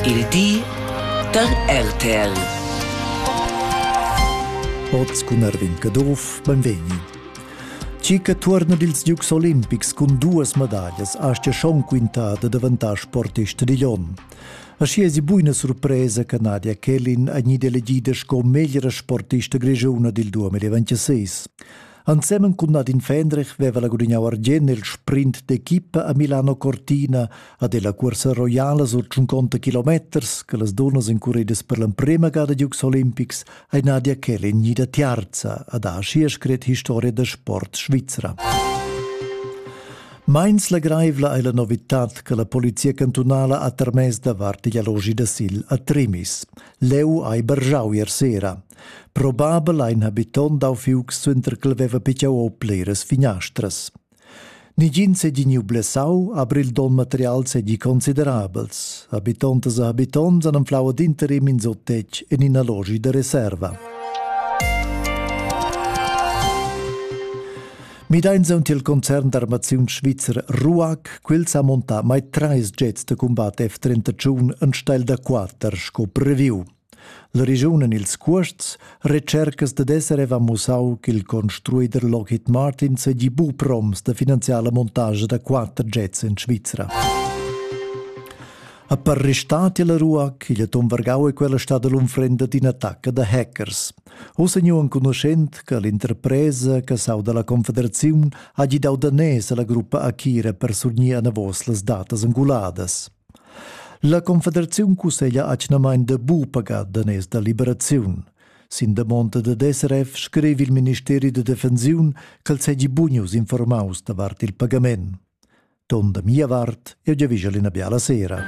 Il di dad RTL. Oz cun Erwin Caduff, benvegni. Ci che tuorna dils Dukes Olimpics cun duas medaglias astga schon quintar da daventar sportista digl onn. Aschi esi buina surpresa che Nadia Kellin è gnida elegida sco meglra sportista grigiuna dil 2026. Ensemen cun Nadine Fendrich veva la gudignau argien nel sprint d'equipa a Milano Cortina a della cursa roiala sur 50 kilometers che las dunnas incuridas per l'emprema gada Dukes Olympics ei Nadia Kelly gnida tiarza ad ha schier scret historia da sport svizra. Meins legreivla ei la novitad che la polizia cantunala ha termess davart igl allogi da sil a Trimis. Leu ei bergiau ier sera. Probabel ha in habiton dau fiuc suenter ch'el veva picciau o pliras finastras. Nigin seigi gniu blessau, aber il donn material seigi considerabels. Habitontas e habitonts han anflau ad interim in sottetg en ina logi da reserva. Mideins aunc il concern d'armaziun svizzer RUAC, quel sa montà mai treis jets da combat F-31 en steil da quater sco previu. La regiun en ils cuosts retschercas dad esser aveva mussau ch'il construider Lockheed Martin seigi buc proms da finanziar la montascha da quater jets en Svizra. A per restati la ruac, igl atom vargau e quella stada l'unfrenda d'ina attacca da hackers. Ossa nu enconuschent che l'interpresa che sau dalla Confederaziun ha gidau danès alla gruppa Akira per surgnir anavos las datas anguladas. La Confederaziun cusseglia atgnamain da bu pagar daners da liberaziun. Sin damonda dad SRF scrivi il ministeri da defensiun ch'el segi bunius informaus davart il pagament. Ton da mia vart, eu giavischa l'ina biala sera.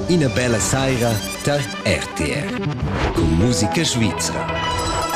Ina bella saira tar RTR. Con musica svizra.